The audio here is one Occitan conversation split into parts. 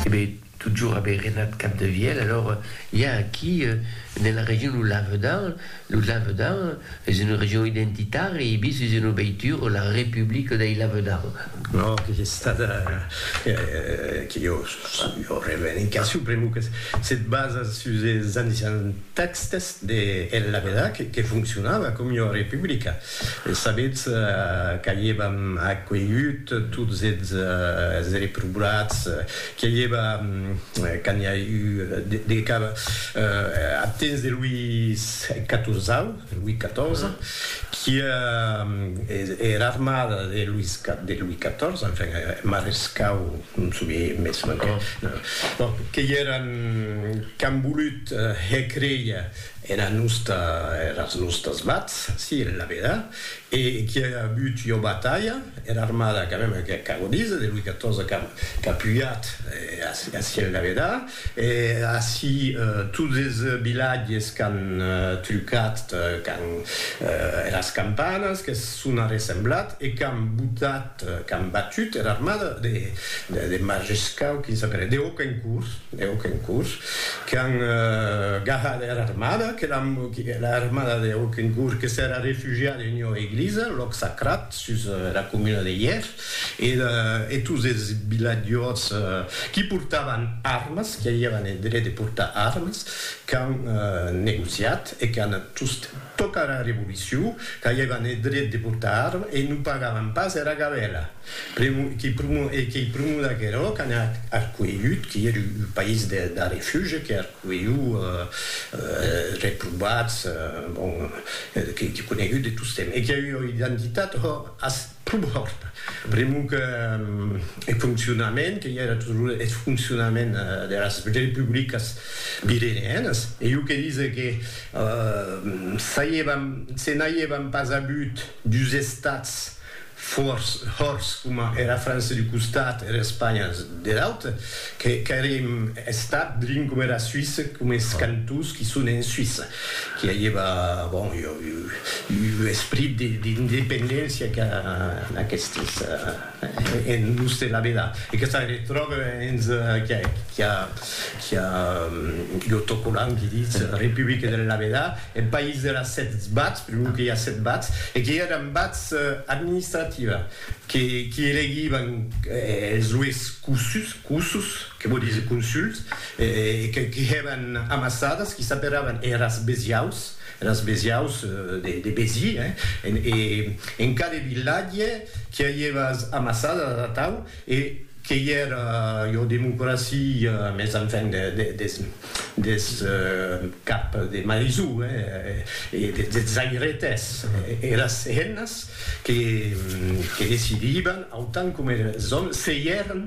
Ebe, totjorn aver renat Capdevièlh, alòr i a aquí, ne la region lo Lavedan, lo Lavedan es una region identitària e bis es una veitura, la Republica dei Lavedan. Ò, que es estada, que jo sò revendicacion pr'amor que se basa sus es ancians tèxtes de El Lavedan, que foncionava com ua republica. E sabetz qu'aievam acuelhut tots eths reprobats, que i eva, quand n'i a eu de cap, ath temps de Louis Catorzau, Louis Catorze, qui e era armada de Louis de Louis Catorze, enfin, marescau, non soubie mès, bon, que i eran qu'an volut hècreia, Era nosta, eras nostas vats, si, en la veda, e qui a avut ua batalha, era armada, quand même, que qu'a godís, de Louis XIV qu'a qu'a pujat, ací en la veda, e ací tots es vilatges qu'an trucat, qu'an eras campanas, qu'es son arressemblat e qu'an botat qu'an batut era armada de Majescau, quin sap era, de Hauquencourt, de Hauquencourt, qu'an gahat era armada, qu'era armada de Hauquencourt que s'era refugiada en ua eglisa, lòc sacrat, sus era comuna de Hièr, e tots es vilatjors qui portavan armas, qui avián eth dret de portar armas, qu'an negociat e qu'an just tocat era revolucion, qu'aievan eth dret de portar arma e non pagavan pas era gabela. Pr'amor que pr'amor e qu'ei pr'amor d'aquerò qu'an arcuelhut, que ère un país de refugi, que arcuelhut reprobats, bon, que conegut de tostemp e qu'ei ua identitat, ho, as. Club Hòrt, pr'amor que eth foncionament que i a era torre, eth foncionament deras republicas pireneanas, e jo que dise que se n'aièvan pas avut dus estats fòrts, hòrts, coma era França d'un costat e era Espanha der aute, qu'èri un estat drin coma era Suïssa, coma es cantons qui son en Suïssa. Qu'i agiva, bon, ua esprit d'independéncia qu'a aquestes en l'ús de la vela. E que ça retròbe hens qu'i a l'autocollant qui ditz Republique de la vela, eth país de las sèt bats, per lo qu'i a sèt bats, e qu'i eran bats administrativa, qu'i elegivan es ues cossus, Que vò díser consult, e que hèban amassadas, qui s'aperavan eras besiaus, eras besiaus de Béziers, hein, e en cada vilatge qui a ievas amassadas atau, e que i era ua democracia, mes enfin des cap de Marizou, hein, e des airetes, eras hennas que decidiban, autant coma eres òmes, se i èran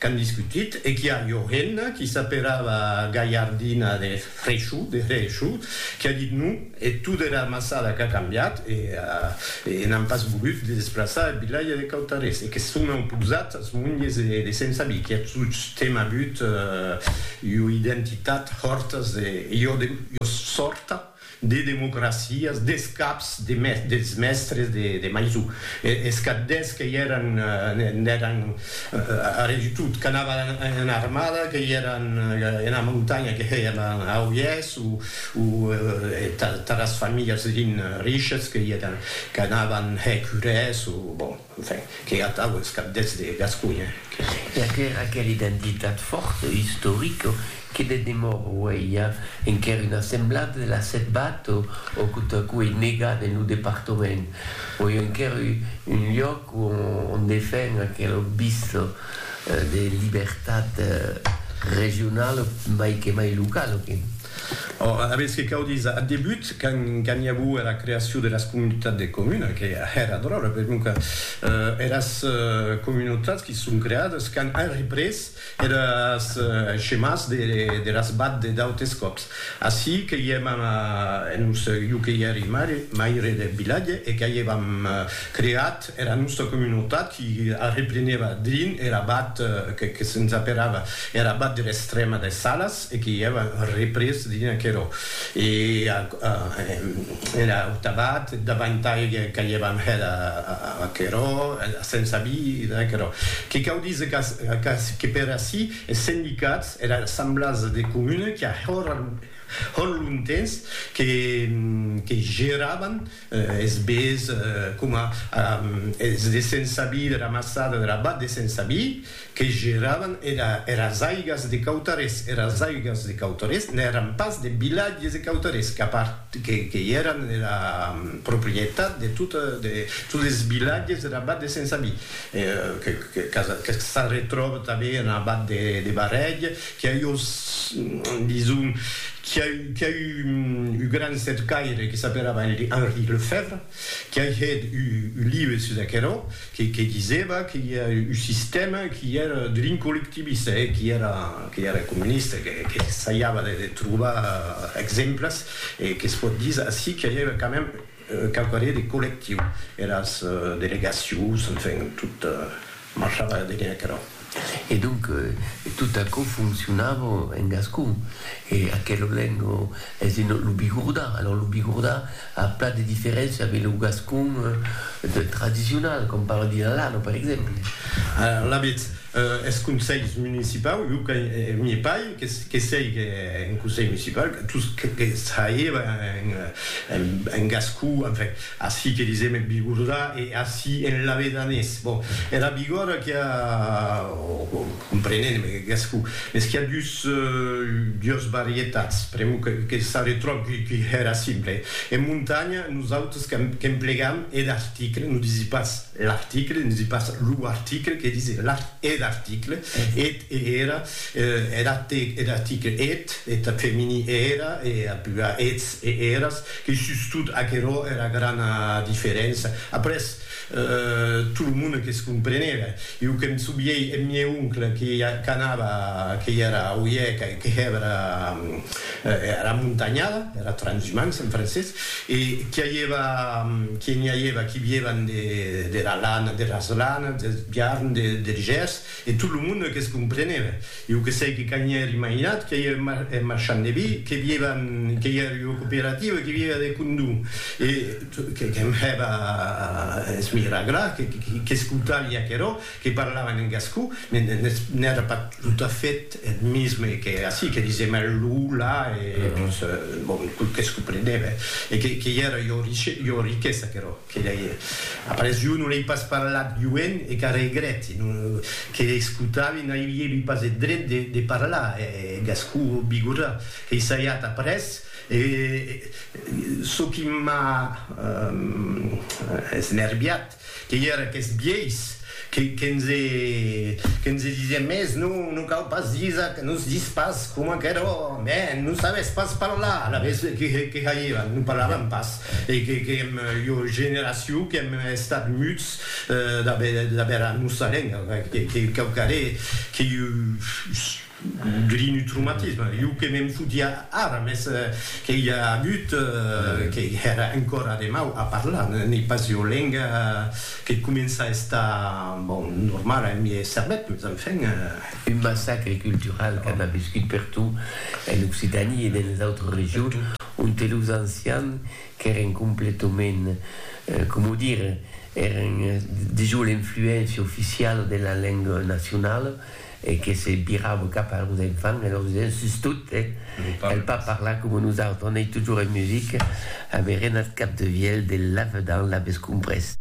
Qu'an discutit e qu'i a Johenna, qui s'aperava Gaiardina de Fréchou, de Hréchou, qui a dit non, e tot era amassada qu'a cambiat e e n'an pas volut de desplaçar eth vilatge de Cautarés e que son auposat as monges de Sent Sabí, qui a tostemp avut ua identitat hòrtas de jo de jo sòrta. de democracias, des caps de mes, des mèstres de, de maison, e, es caddes que i èran, n'èran a re du tot, qu'anavan en armada, que i èran ena montanha, que hè ena auièrs, o, o taras familhas rin riches, que i èran, qu'anavan hè curès, o, bon. Enfin, qu'ei atau es cabdets de Gasconha que. E aquera aquera identitat fòrta istorica que de demòra auei a enquèr una semblada de la setbat o o que tot a coup ei negat en lo departament o ei enquèr un lloc on on defen aquela vista de libertat regionala mai que mai locala que. Ora, aviètz que cau díser, ath debut, quand i aguo era creacion de las comunitats de comuna, que èra dròlle, per non que eras comunotats qui se son creades quand an représ eres schemas de las bad de d'autes còps. Ací que i èm en un, jo que i èri maire deth vilatge e qu'a i èvam creat, Era nòsta comunotat i arreplenèva drin er abat que que se'ns aperava er abat der Estrèma des Salas e que i èva représ drin aquerò. E a er aut abat davantai qu'aievam hèt aquerò, se'ns avi da aquerò. Que cau díser qu'ac que per ací es sendicats, era Assemblasa de Comuna qu'a hòr hòr lontens que que geravan Es bés coma es de Sensabí, de la maçada de la Bat de Sensabí, que geravan eras aigas de Cautarés. Eras aigas de Cautarés n'èran pas de vilatges de Cautarés, que i èran era proprietat de totes es vilatges dera Bat de Sensabí, que s'arretròba tanben ena Bat de Barrèg Qu'i a eu, dison, qu'i a eu, qu'i a eu un gran cercaire que s'apelava Henri Lefèvre, qu'i a hèt un live sus aquerò, que, que disèva que i a un sistèma qu'i èra drin collectivista, e qu'i èra, qu'i èra comunista, que, que s'aiava de, de trobar exemples, e que's pòt díser ací qu'i aièva quand même, Quauquarré de collectiu, eras delegacions, enfin, tot marchava darrèr aquerò. E donc, tot aquò foncionava en gascon. E aquela lenga es en lo bigordà. Alòrs, lo bigordà a plan de diferéncia avec lo gascon tradicional, com parla Dilalano, per exemple. Alavetz, Es conselhs municipaus, jo que m'i pai que seigue un conselh municipau, tot ce que traeva en gascon, enfin, ací que disem en bigordà e ací en lavedanés. Bon, era bigòrda qu'i a, comprenent eth gascon, mès qu'i a dus, dues varietats, pr'amor que s'arretròb qu'era simple. En montanha, nosautres qu'emplegam eth article, non disi pas L'article, ne dis pas lo article, que dis l'art eth article, eth e era, er artic, er article, eth, eth femini e era, e a pua eths e eras, que sustot aquerò era grana diferença. Après, tot lo monde que's compreneve. Jo que'm souviei eth mieu oncle que qu'anava, que i era auie, que hèva era, era montanhada, era transhumança en francés, E qu'i aièva, qu'i n'i aièva qui vièvan de, dera lana, deras lanas, deth biarn, de, der gèrs, e tot lo monde que's comprenèva. Ieu que sei que qu'a n'i èr imaginat que ieu eth marchand de vi, que vièvan, que ieu ua cooperativa, que vièva de condom, e que'm hèva a esmirar gra, que'scoutaria aquerò, que parlavan en gascon, mais n'èra pas tot a fait eth misme que ací, que disèm eth lo, la, e tot qu'es comprenève, e que i èra ua riquesa aquerò, que lei hè. Après, jo non lei pas parlat joen e qu'ara egrèti, que escotavi n'aviévi pas eth dret de parlar eth gascon bigorrà, qu'ei saiat après, e çò qui m'a esnerviat, Que i era aqueth biais que nse disié mès non, non cau pas disar que nos dis pas coma qu'eró, mè non sabés pas parlar, alavetz que jairàn, non parlaràn pas, e que èm ua generacion qu'èm estat muts d'aver era nossa lenga, que cau caré que Grinutrumatisme, jo que me'n fotia ara, mès que i a agut que èra encòra de mau a parlar, n'ei pas ua lenga que comença a estar, bon, normala en miei cervèth, mès enfin. Un massacre cultural que an aviscut pertot en Occitània e denes autres regions onte los ancians qu'èren completament, coma o dire, èren dejós l'influéncia oficiala de la lenga nacionala, e que se virava cap a los enfants e lor disent sus tot, cal pas parlar coma nosautres, on ei totjorn en musica, aberenat cap de vièlh de lavedan, l'avètz comprés.